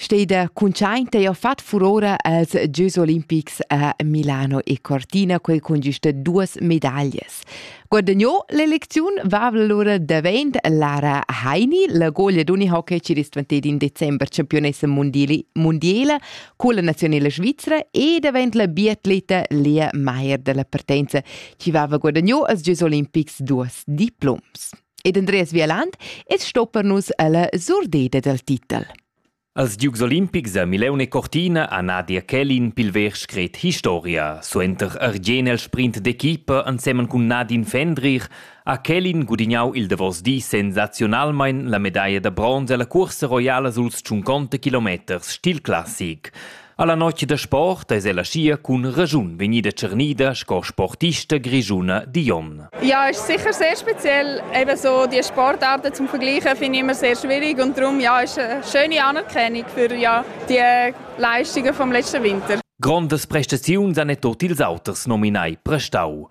Steida cuntschaint ei fat furora als Gieus olimpics a Milano e Cortina, quei cun giusta duas medaglias. Guadagnò l'elecziun va allora davent Lara Heini, la goglia d'unihockey ci ristvantedi in december campionessa mondiali, mondiala con la nazionale svizzera e davent la biatleta Lea Meier della partenza, ci vava guadagnò als Gieus olimpics duas diploms. Ed Andreas Vieland es sto per nus ella surdeda dal titel. Als Dukes Olimpics a Mileune Cortina a Nadia Kellin pilver scret Historia, suenter ergen el sprint d'equipa ensemen cun Nadine Fendrich ha Kellin gudignau il davos di sensaziunalmein la medaglia da bronz alla cursa roiala suls 50 kilometers stil classic. Alla notg da sport eis ella schia cun raschun vegnida tschernida sco sportista grischuna Dion. Ja, ist sicher sehr speziell. Eben so die Sportarten zum Vergleichen finde ich immer sehr schwierig und darum ja ist eine schöne Anerkennung für ja die Leistungen vom letzten Winter. Grandes prestaziuns han er tot ils auters nominai prestau.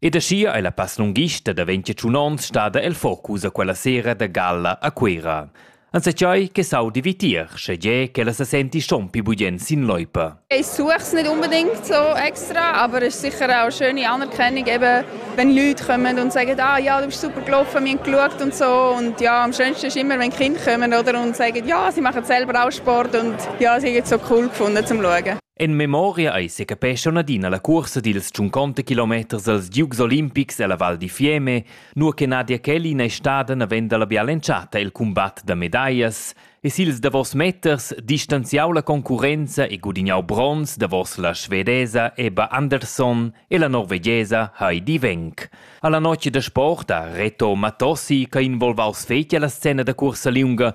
Ed aschia ei la passlunghista da ventiatschun onns stada el focus a quella sera da galla a Cuera. Enzatgei che saudi vitier, schegie ch'ella se senti schon più bugen sin loipa. Ich suche es nicht unbedingt so extra, aber es ist sicher auch eine schöne Anerkennung, eben, wenn Leute kommen und sagen, ah ja, du bist super gelaufen, wir haben geschaut und so. Und ja, am schönsten ist immer, wenn Kinder kommen oder, und sagen, ja, sie machen selber auch Sport und ja, sie haben es so cool gefunden zum Schauen. En memoria ei secapescha adina la cuorsa dils tschunconta kilometers els giugs olimpics ella Val di Fiemme, nua che Nadia Kelly n'ei stada naven dalla bial'entschatta el cumbat da medaglias e sils davos meters distanziau la concurrenza e gudignau bronz davos la svedesa Ebba Andersson e la norvegiesa Heidi Wenck. Alla notg da sport ha Reto Matossi, che ha involvaus fetg alla scena da cursa liunga,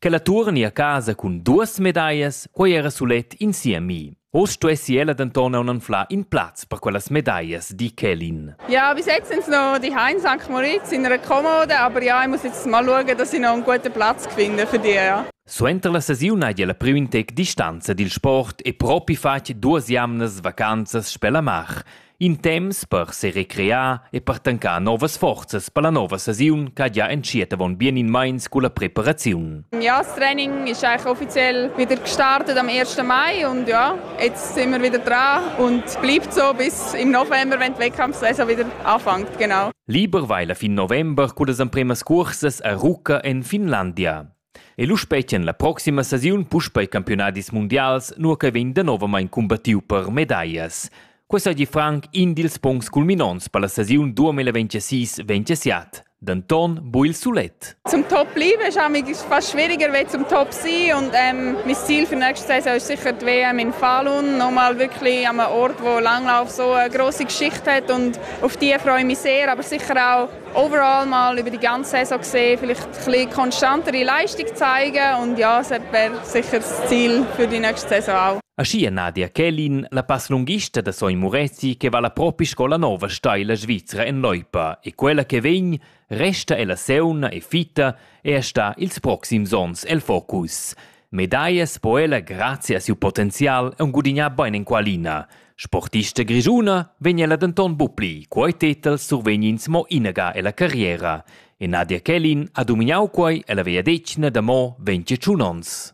Ch'ella tuorni a casa cun duos medaglias, quei era sulet in siemi. Oz stuessi ella denton aunc anflar in plaz per quellas medaglias, di Kelin. Ja, bis jetzt sind noch die in St. Moritz in einer Kommode, aber ja, ich muss jetzt mal schauen, dass ich noch einen guten Platz finde für die. Ja. Suenter la sesiun hai la priu in tec distanza dil sport e propi fatg duas jamnas vacanzas sper la mar. In temps per serecrear e per tancar novas forzas per la nova sesiun ch'ha gia entschiet avon bien in meins culla preparaziun. Ja, das Training ist eigentlich offiziell wieder gestartet am 1. Mai und ja, jetzt sind wir wieder dran und bleibt so bis im November, wenn die Wettkampfsaison wieder anfängt, genau. Lieber weil fin november cullas empremas cursas a Rucca en Finlandia. E lu spetgan la proxima stagiun puspei campiunadis mundials, nua che vegn danovamein cumbattiu per medaglias. Quei seigi franc in dils puncts culminonts per la stagiun 2026-27. Denton bu il sulet. Zum Top bleiben ist manchmal fast schwieriger als zum Top sein und ähm, mein Ziel für nächste Saison ist sicher die WM in Falun, nochmal wirklich an einem Ort, wo Langlauf so eine grosse Geschichte hat und auf die freue ich mich sehr, aber sicher auch Overall mal über die ganze Saison gesehen vielleicht ein bisschen konstantere Leistung zeigen und ja, es wäre sicher das Ziel für die nächste Saison auch. Aschia Nadia Kellin, la passlunghista da Sogn Murezi che va la propi scola nova steila svizra en loipa e quella che vegn resta ella seuna e fitta e sta ils proxims onns el focus. Medaglias po ella grazia a siu potenzial aunc gudignar bein enqualina. Sportista grischuna vegn ella denton buc pli, quei tetel survegnins mo inaga ella carriera. E Nadia Kellin ha dominau quei ella vegliadetgna da mo 21 onns.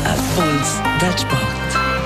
Al puls dal sport.